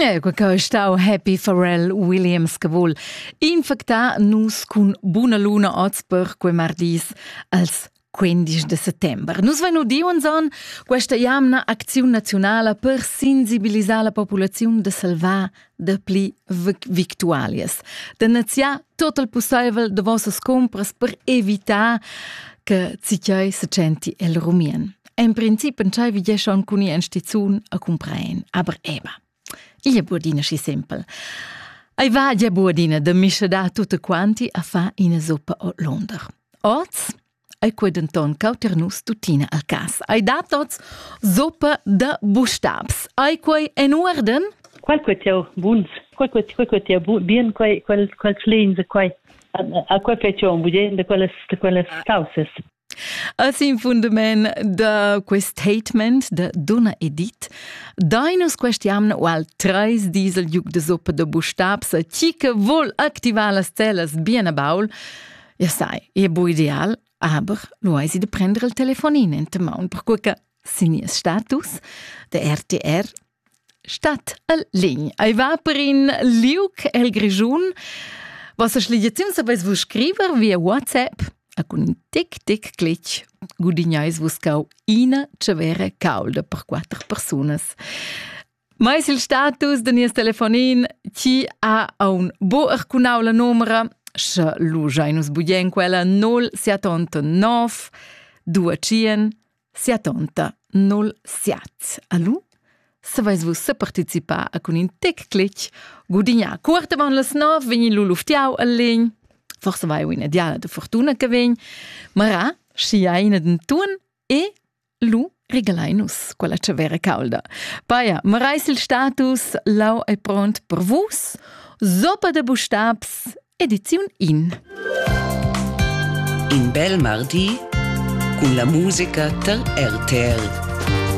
Quei che stau Happy Pharrell Williams che vul infectar nus cun buna luna oz per quei mardis als 15 de settembre. Nus vein udiu anzon questa jamna acziun nazionala per sensibilisar la populaziun de salvar dapli victualias, da naziar tot il pusseivel de vossas compras per evitar che Cicei se centi el rumien. En princip entscheivi je schon cun in stizun a compraen, aber eba. Il è buordina schi simpel. Ei va je buordina de mische da tutte quanti a fa ina zuppa o Londra. Oz ei quei denton cauter nus tuttina a casa. Ai da tots zoppa da bustabs. Ai quei en uorden? Qual quei teu buns? Qual quei quei quei teu bien quei quel quel tlins quei a quei fai teu budien de quelles de quelles causes. Als in fundament da quest statement de Donna Edith, dainus questiam ual treis diesel juc de zoppa de bustabs a chi che vol activar las telas bien a baul, Ja sai, è bu ideal, aber lo hai si de prender il telefonin in te maun, perque che sin nies status de RTR stat al lign. Ei va per in liuc el Grischun. Was a schligiaziun sapeis vus scriver via WhatsApp a cun in tic tic clic gudignais vus cau ina cevere caulda per quatter persunas. Mais il status da nies telefonin ti ha aun bo arcunau la numera, sche lu schai nus bugien quella 0789 21 70 07. Alu? Saveis vus se participar a cun in tec clic, gudignar cuort avant las 9 vegn lu luftiau al legn, forse vai ina diala de fortuna che vegn, mara, schi ha ina den tun e Lu regalain nus quella tschavera caulda. Paia, marais il status, lau è pront per vus. Zoppa da bustabs, ediziun in. In bel mardi cun la musica dal RTL.